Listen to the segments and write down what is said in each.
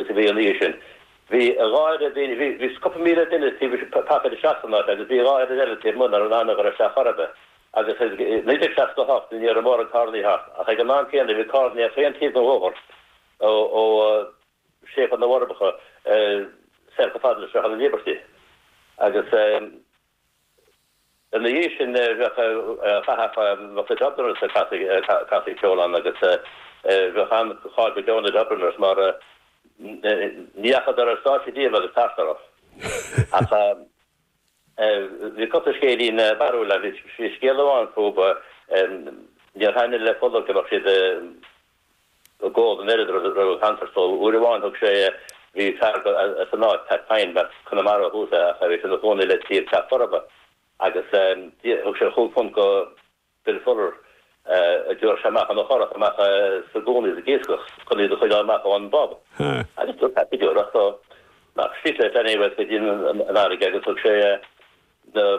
Sa bhliain ina dhiaidh sin, bhí a dhá oiread daoine, bhí cúpla míle duine taobh istigh pacáilte isteach san áit agus bhí a dhá oiread eile taobh amuigh, nach raibh in ann a ghoil isteach chor ar bith. Agus i 1968 ní raibh mórán carrannaí thart, ach ag an am céanna bhí carrannaí ar chaon taobh den bhóthar ó séipéal na bhForbacha soir chomh fada le Sruthán na Líbeirtí agus. Ina dhiaidh sin, bhíodh thagadh amach na Dubliners ag casadh ceoil ann agus bhíodh an-cháil go deo ar na Dubliners mar ní dheachadar ar stáitse riamh agus tart orthu. Ach bhí cúpla scéilín barrúil ann. Bhí scéal amháin fúthu, níor thaitnigh le Fuller go mbeadh siad, ag ól an oiread raibh a chance ar siúl. Uair amháin thug sé, bhí fear as an áit, Pat Pine, as Conamara ó thús é ach bhí sé ina chónaí le taobh Teach Furbo agus thug sé chúig phunt dó Bill Fuller iad a thabhairt amach ina churach amach sa gcuan ag iascach chun iad a choinneáil amach ón bpub agus dúirt Pat go deo leo nach stick le flaithní uait go dtí an fharraige agus thug sé na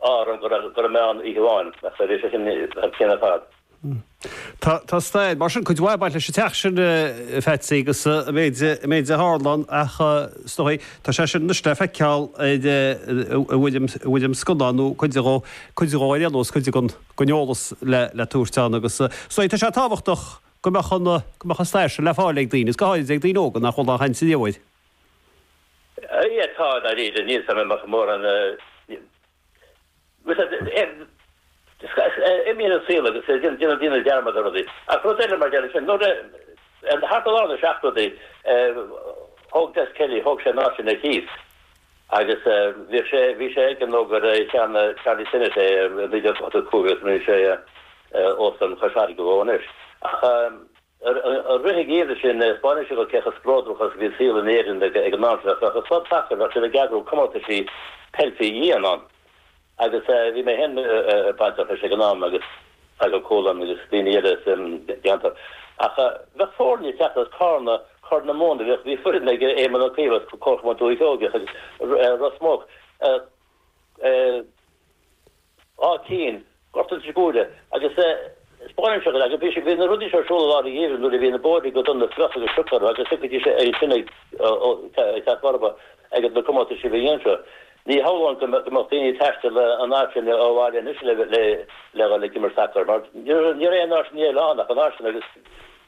orm go raibh mé ann oíche amháin agus bhí sé sin thar cionn ar fad. Tá stair, mar sin, cuid mhaith ag baint leis an teach sin, a Pheatsaí, agus an méid a tharla ann ach, is dóigh, tá sé sin anois le feiceáil i bhfoirm scannán nó cuid de, cuid dhó ar aon nós, cuid den eolas le tabhairt ann agus, is dóigh, tá sé tábhachtach go mbeadh an stair sin le fáil ag daoine, is go háirid ag daoine óga nach bhfuil á haithint inniu uair. Yeah, tá dáiríre, níl a fhios a'm an mbeadh mórán, níl, imíonn an saol agus déanann daoine dearmad ar rudaí. Ach rud eile, mar gheall ar sin, nuair a, thart ar lár na seachtóidí, thóg Des Kelly, thóg sé an áit sin ar cíos agus bhíodh sé, bhí sé aige nó gur cheannaigh Charlie Sinnott é i 1985 agus rinne sé Óstán Chois Fharraige dhó anois ach, Ar an rith i gcéin sin, spáineann sé cé chomh spleodrach agus a bhí an saol in Éirinn ag an am sin, ach bheadh an club sacair, bheadh siad ag eagrú comórtaisí peil faoi dhíon ann, agus bhí mé féin bainteach leis ag an am, agus Feargal Colan agus daoine eile as an gceantar. Ach bheadh foirne ag teacht as Carna, Corr na Móna, bhíodh, bhí foireann ag Éamon Ó Cuív as Comharchumann Dhúiche Sheoigheach, agus Ros Muc, eh, eh, Áth Cinn, Gort Inse Guaire. Agus eh, spáineann sé an leagan. Bhí sé, bhí na rudaí seo ar siúl i lár an gheimhridh nuair a bhí na bóithrí go dona fliuch agus sioc orthu agus thiocfaidís ar an tine ag, ó, ó, ag Teach Furbo ag na comórtaisí faoi dhíon seo. Ní shamhlóinn go, go mbeadh daoine ag taisteal an fhad sin ó bhaile anois le, le, le dhul ag imirt sacair mar ní raibh, ní raibh aon áit indoor eile ann ach an áit sin agus,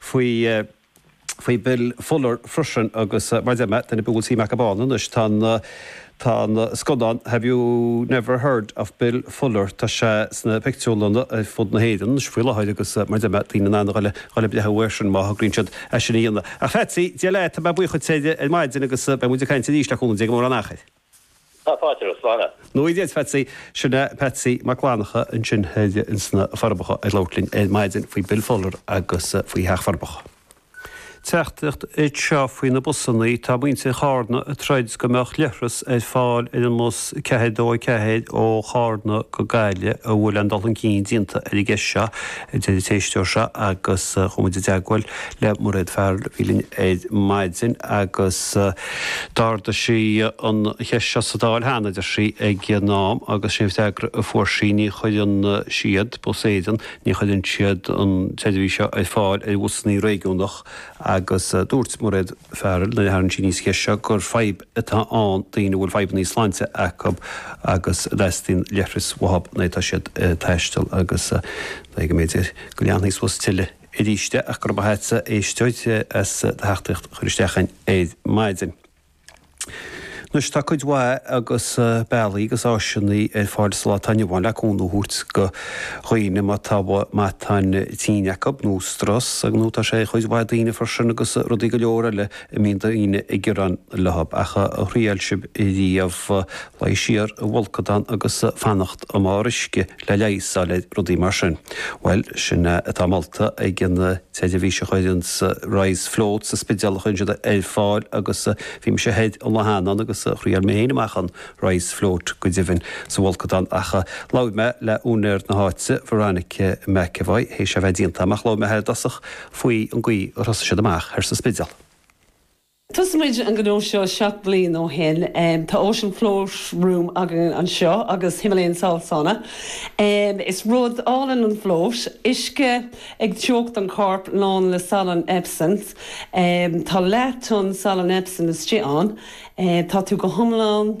faoi, faoi Bill Fuller freisin agus mar deir mé, daoine a bhfuil suim acu ann anois, tá an, tá an scannán Have You Never Heard of Bill Fuller, tá sé sna pictiúrlanna ar fud na hÉireann anois faoi láthair agus mar deir mé, tá daoine in ann a dhul, dhul ag breathnú air sin má thograíonn siad é sin a dhéanamh. A Pheatsaí, Dia leat, tá mé buíoch duit ar maidin agus beidh muid ag caint arís le cúnamh Dé gan mórán achair. Tá fáilte romhat, slán. Go ngnóthaí Dia dhuit, a Pheatsaí. Sin é Patsy Mac Fhlannacha ansin thoir insna Forbacha ag labhairt linn ar maidin faoi Bill Fuller agus faoi Theach na bhForbacha. Teachtaireacht anseo faoi na busannaí, tá muintir Chárna ag troid go mbeadh leithreas ar fáil ar an mbus 424 ó Chárna go Gaillimh an bhfuil aon dul chun cinn déanta ar an gceist seo, a deir an t-éisteoir seo agus chuaigh muid i dteagmhail le Mairéad Farrell a bhí linn ar maidin agus d'ardaigh sí an cheist seo sa Dáil cheana, a deir sí, ag an am agus sin an freagra a fuair sí, ní chuireann siad, Bus Éireann, ní chuireann siad an tseirbhís seo ar fáil ar bhusanna réigiúnach agus dúirt Mairéad Farrell nuair a tharraing sí aníos an cheist seo gur fadhb atá ann do dhaoine a bhfuil fadhbanna sláinte acu agus go dteastaíonn leithreas uathub nuair atá siad ag taisteal agus go leanfaidh sí suas tuilleadh. aríst é agus go raibh maith agat a éisteoir as do theachtaireacht a chur isteach ar maidin. Anois, tá cuid mhaith bealaí agus áiseannaí ar fáil sa lá atá inniu ann le cúnamh a thabhairt go dhaoine má tá matáin tinn acu, nó strus, ar ndóigh tá sé ag cuid mhaith daoine freisin agus rudaí go leor eile a mbíonn daoine ag gearán leo, ach ar thriail sibh riamh luí siar i bhfolcadán agus fanacht i mbarr uisce le leigheas a fháil ar rudaí mar sin. Bhuel, sin é atá molta ag an tseirbhís seo a chuireann Rise Float sa Spidéal a chuireann siad ar fáil agus bhí mise thoir ann lá cheana agus thriail mé féin amach an Rise Float, go deimhin, sa bhfolcadán ach labhair mé le úinéir na háite, Veronica McEvoy, théis a bheith déanta amach, labhair mé léi i dtosach faoi an gcaoi ar thosaigh siad amach thoir sa Spidéal. Thosaigh muid an gnó seo seacht mbliain ó shin. Tá Ocean Float Room againn anseo agus Himalayan Salt Sauna. Is rud álainn an float, uisce ag teocht an corp lán le salann Epsom. Tá leath-thonna salann Epsom istigh ann. Tá tú go hiomlán.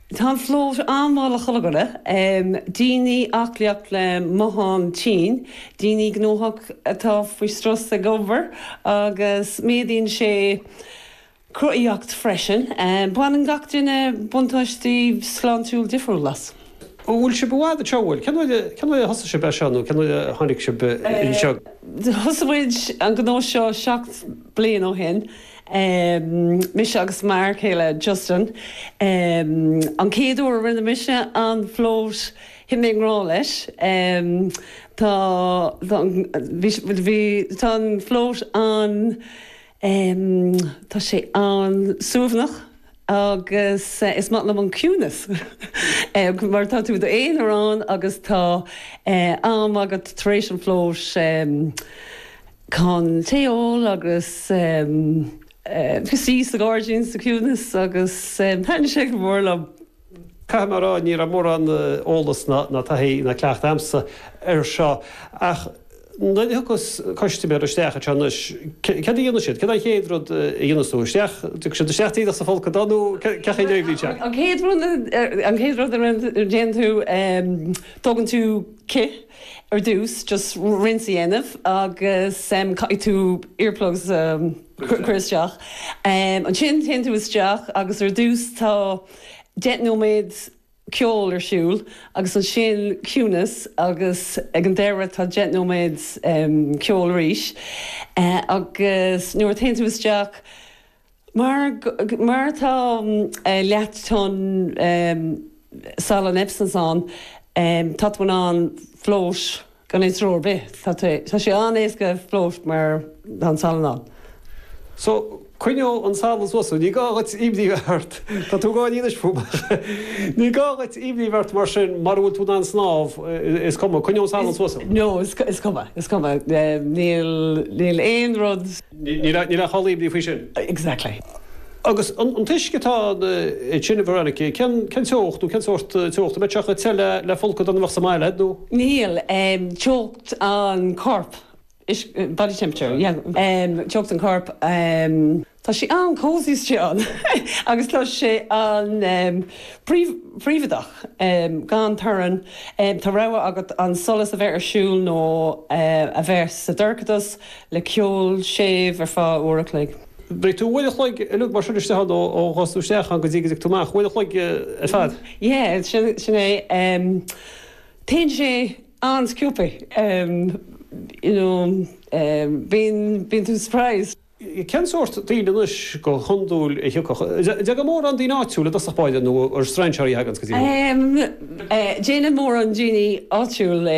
Tá an float an-mhaith le haghaidh codladh, daoine aclaíocht le matán tinn, daoine gnóthach atá faoi strus ag obair agus méadaíonn sé cruthaitheacht freisin. Baineann gach duine buntáistí sláintiúil difriúil as. An bhfuil sibh i bhfad ag treabhadh? Cén uair a thosaigh sibh é seo nó cén uair a tháinig sibh anseo? Thosaigh muid an gnó seo seacht mbliain ó shin. mise agus m'fhear céile Justin. An chéad uair a rinne mise an float, thit mé i ngrá leis. Tá an float an, tá sé an suaimhneach agus is maith liom an ciúnas mar tá tú d'aonar ann agus tá am agat tar éis an float, chun tae a ól agus suí sa ghairdín sa chiúnas agus thaitin sé go mór liom. Caithfidh mé a rá, ní raibh mórán eolas ná taithí ná cleachtadh agamsa air seo ach nuair a thiocfas custaiméir isteach anseo anois, cad a dhéanfaidh siad? Cad é an chéad rud a dhéanfas tú? Isteach, tiocfaidh siad isteach díreach sa bhfolcadán nó cad é a dhéanfaidh siad? An chéad rud a dhéanfaidh tú, tógann tú cith. Ar dtús, just rinse a dhéanamh agus caithfidh tú earplugs a chur isteach. Ansin téann tú isteach agus ar dtús tá deich nóiméad ceol ar siúl agus ansin ciúnas agus ag an deireadh tá deich nóiméad ceol arís agus nuair a théann tú isteach, Mar tá leath tonn salann Epsom ann, tá tú in ann float gan aon stró ar bith. Tá sé an-éasca float mar tá an salann ann. So, coinneoidh an salann suas thú. Ní gá dhuit imní bheith ort. Tá tú ag gáirí anois fúm. Ní gá dhuit imní bheith ort mar sin, mura bhfuil tú in ann snámh, is cuma, coinneoidh an salann suas thú. No, is cuma, is cuma. Níl aon rud. Níl a chall imní faoi sin. Exactly. Agus an t-uisce atá ansin, a Veronica, cén teocht nó cén sórt teochta? An mbeidh sé chomh te le folcadán a bheadh sa mbaile a'd, nó? Níl. Teocht an choirp, body temperature, yeah. Teocht an choirp, tá sé an-cosy ansin agus tá sé an príobhaideach, gan torann. Tá rogha agat an solas a bheith ar siúl nó a bheith sa dorchadas. le ceol séimh ar feadh uair a chloig. Beidh tú uair a chloig uilig mar sin istigh ann ó théanns tú isteach ann go dtí go dtaga tú amach, uair a chloig ar fad. Yeah, sin é. Téann sé an-sciobtha, you know, bíonn tú surprised. Cén sórt daoine anois go hiondúil a thiocfadh? An dtagann mórán daoine áitiúla i dtosach báire nó an strainséirí a thaganns go dtí thú? Tagann mórán daoine áitiúla.